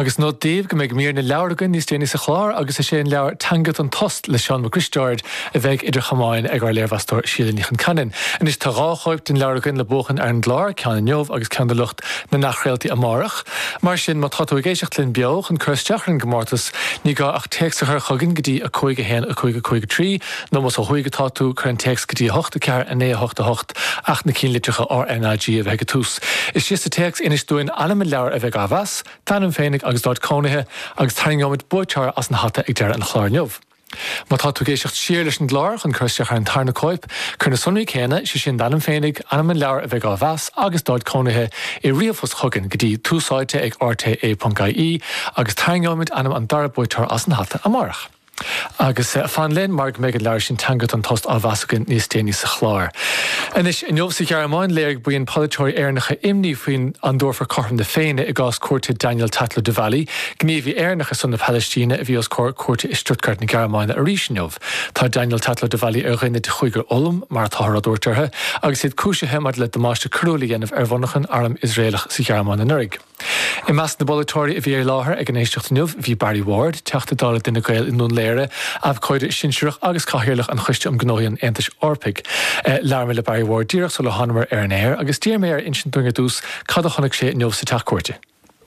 Agus nod daoibh go mbeidh mír na leabhar againn níos déanaí sa chlár agus is é an leabhar Teanga don Tost le Seán Mac Risteaird a bheidh idir chamáin ag ár léirmheastóir Síle Ní Choincheannain. Anois tá dhá chóip den leabhar againn le buachan ar an gclár, ceann inniu agus ceann do lucht na n-athchraoltaí amárach. Mar sin má tá tú ag éisteacht linn beo chun cur isteach ar an gcomórtas ní gá ach téacs a chur chugainn go dtí 51553, Nó más ó thuaidh atá tú, cuir an téacs go dtí 8, 4, 9, 8, 8, acht na cinnlitreacha R, N, A, G a bheith ag a tús. Is sa téacs inis dúinn ainm an leabhair a bheidh á mheas, d'ainm féinig agus d'áit cónaithe, agus tarraingeoimid buaiteoir as an hata ag deireadh an chláir inniu. Má tá tú ag éisteacht siar leis an gclár chun cur isteach ar an tarna cóip, cuir na sonraí céanna, sé sin d'ainm féinig, ainm an leabhair a bheidh á mheas agus d'áit cónaithe, i ríomhphost chugainn go dtí, túsáite ag, rte. ie, agus tarraingeoimid ainm an dara buaiteora as an hata amárach. Agus fan linn mar go mbeidh an leabhar sin Teanga don Tost á mheas againn níos déanaí sa chlár. Anois, inniu sa Ghearmáin, léirigh buíon polaiteoirí Éireannacha imní faoi an dtabharfar cothrom na Féinne i gcás cúirte Daniel Tatlow-Devally, gníomhaí Éireannach ar son na Palaistíne a bhí os comhair cúirte i Stuttgart na Gearmáine arís inniu. Tá Daniel Tatlow-Devally ar dhuine de chúigear Ulm, mar atáthar ag tabhairt orthu, agus iad cúisithe maidir le damáiste coiriúil a dhéanamh ar mhonarchain airm Iosraelach sa Ghearmáin anuraidh. I measc na bpolaiteoirí a bhí i láthair ag an éisteacht inniu bhí Barry Ward, Teachta Dála d'Fhine Gael i nDún Laoghaire, abhcóide sinsearach agus Cathaoirleach an Choiste um Ghnóthaí an Aontais Eorpaigh. Labhair mé le Barry Ward díreach sular thánamar ar an aer agus d'iarr mé air insint dúinn ar dtús cad a chonaic sé inniu sa Teach Cúirte.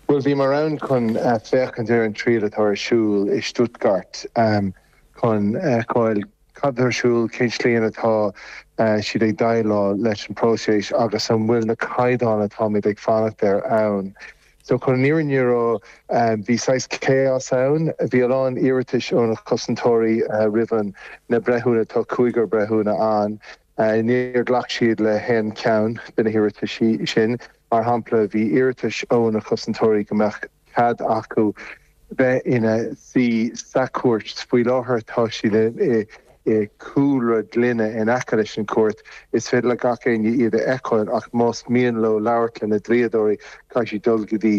Bhuel, bhíomar ann chun féachaint ar an triail atá ar siúl i Stuttgart chun feiceáil. Cad atá ar siúl, cén tslí ina atá siad ag déileáil leis an bpróiseas agus an bhfuil na caighdeáin atáimid ag fanacht air ann. So chun an fhírinne a rá bhí saghas chaos ann, bhí a lán iarratais ó na cosantóirí roimh na breithiúna, tá cúigear breithiúna ann, níor ghlac siad le haon cheann de na hiarrataisí sin. Mar shampla bhí iarratais ó na cosantóirí go mbeadh. cead acu bheith ina suí sa chúirt. Faoi láthair tá siad i cúlra gloine in aice leis an chúirt. Is féidir le gach éinne iad a fheiceáil ach más mian leo labhairt le na dlíodóirí caithfidh siad dul go dtí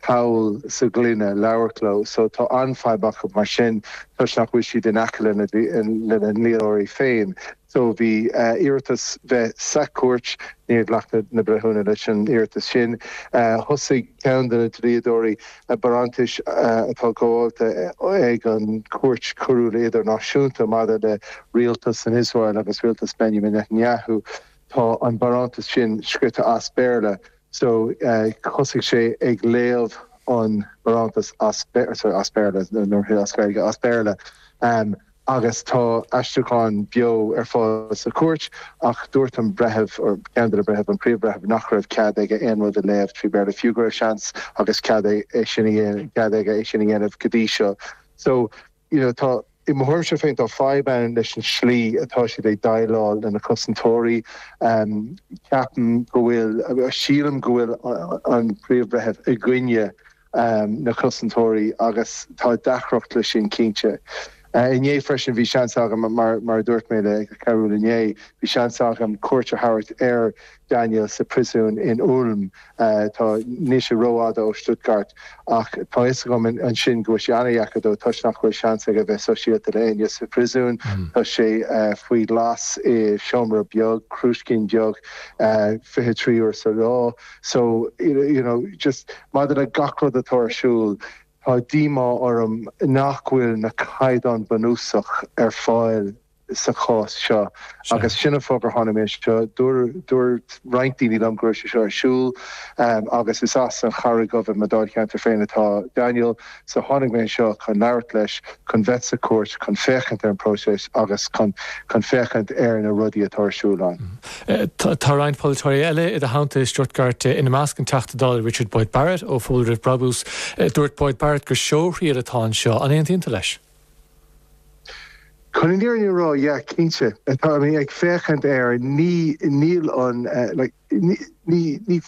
poll sa ghloine labhairt leo. So tá an-fhadhb acu mar sin toisc nach bhfuil siad in aice lena ndlíodóirí féin. So bhí iarratas bheith sa Chúirt. Níor ghlac na breithiúna leis an iarratas sin. Thosaigh ceann de na dlíodóirí barántais atá gabhálta ag an Chúirt Coiriúil Idirnáisiúnta maidir le rialtas in Iosrael agus rialtas Benjamin Netanyahu. Tá an barántas sin scríte as Béarla. So thosaigh sé ag léamh an barántas as Béarla. agus tá aistriúcháin beo ar fáil sa chúirt, ach dúirt an breitheamh, or ceann de na breithimh, an Príomh-Bhreitheamh, nach raibh cead aige aon rud a léamh trí Bhéarla, fiú go raibh seans agus cead é sin a dhéanamh, cead aige é sin a dhéanamh go dtí seo. So, you know, tá, i mo thuairimse féin, tá fadhb ann leis an slí atá siad ag déileáil le na cosantóirí. Ceapaim go bhfuil, sílim go bhfuil an Príomh-Bhreitheamh i gcoinne na cosantóirí agus tá deacracht le sin cinnte. Inné freisin bhí seans agam, mar a dúirt mé le Cearbhall inné, bhí seans agam cuairt a thabhairt ar Daniel sa príosún in Ulm. Tá, níl sé ró-fhada ó Stuttgart ach tá fhios agam ansin go bhfuil sé an-dheacair dó toisc nach bhfuil seans aige bheith sóisialta le éinne sa phríosún. Tá sé faoi ghlas i seomra beag, crúiscín beag, fiche trí uair sa lá. So, you know, just maidir le gach rud atá ar siúl, tá díomá orm nach bhfuil na caighdeáin bunúsach ar fáil sa chás seo agus sin an fáth gur tháinig mé anseo. Dúirt roinnt daoine liom go raibh sé seo ar siúl agus is as an Charraig Dhubh i mo dáilcheantar féin atá Daniel. So tháinig mé anseo chun labhairt leis, chun bheith sa chúirt, chun féachaint ar an próiseas agus chun féachaint ar na rudaí atá ar siúl ann. Tá roinnt polaiteoirí eile i do theannta i Stuttgart, ina measc an Teachta Dála Richard Boyd Barrett ó Phobal Roimh Brabús. Dúirt Boyd Barrett gur seóthriail atá anseo. An aontaíonn tú leis? Chun an fhírinne a rá, yeah, cinnte. Tá, I mean, ag féachaint air, ní, níl an, like, ní, ní, ní,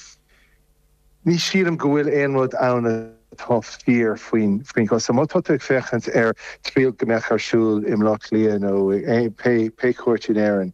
Ní shílim go bhfuil aon rud ann atá fíor faoin, faoin gcás seo. Má tá tú ag féachaint ar triail go mbeadh ar siúl i mBleá Cliath nó pé cúirt in Éirinn,